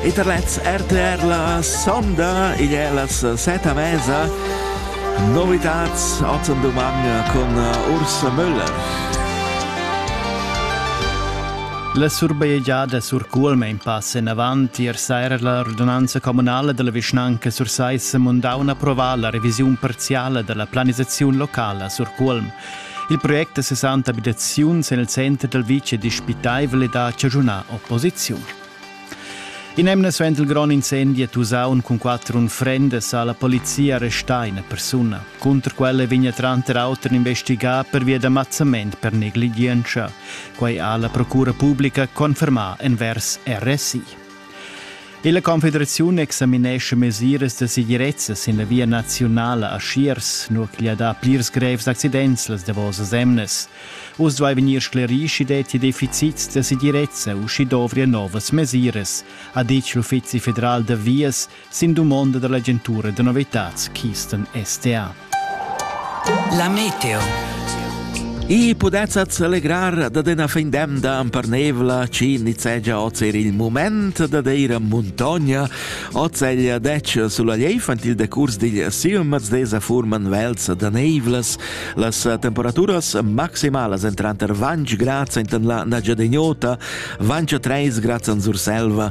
Internet RTR la sonda, igl è las seta mesa. Novitats ozen dumang con Urs Müller. La surbajegiada sur Culmein passa enavant ier saira la radunanza communala della vischnanca sur Seis Mundaun approvà la revisiun parziale della planisazione locala sur Culm. Il project da 60 abitaziuns en il center dal vitg è dispitaivel ed ha chaschunà opposiziun. In'emna suenter il grond incendi a Tusaun cun quatter unfrendas ha la polizia arrestà ina persuna. Cunter quella vegna tranter auter investigà pervia da mazzament per negligientscha. Quai ha la procura publica confermà envers RSI. Illa Confederaziun examinescha mesiras da segirezza sin la via naziunala a Schiers, nur ch'igl ha dà plirs grevs accidents las davosas emnas. Uss duai vegnir sclerì sch'i detti deficits da segirezza u sch'i dovria novas mesiras, ha ditg l'Uffizi federal da vias sin dumonda dall'agentura da novitads Keystone STA. La meteo. I pudessat allegrar da dena fin demda amparnevla ci nizegia ozer il moment da deira montogna, ozelia dec sulla leif ant il decurs digl silmaz desa furman velz da neivlas, las temperaturas maximalas entranter 20 grad sentan la nagia degnota, 23 grad an Surselva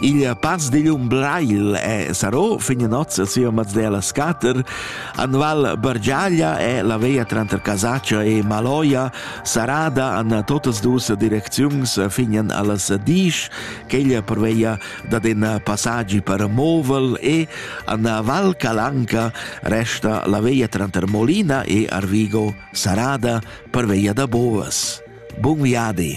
Il paz digl um Bleil e Sarò fin notz sia Mazdela Scatter, Anval Bargiaglia e la veia tranter Casaccia e Maloia sarada an totas dus direcziuns finen allas Disch, quella per veia dat in passaggi per Movel e an Val Calanca resta la veia tranter Molina e Arvigo sarada per veia da Bovas. Bun viadi!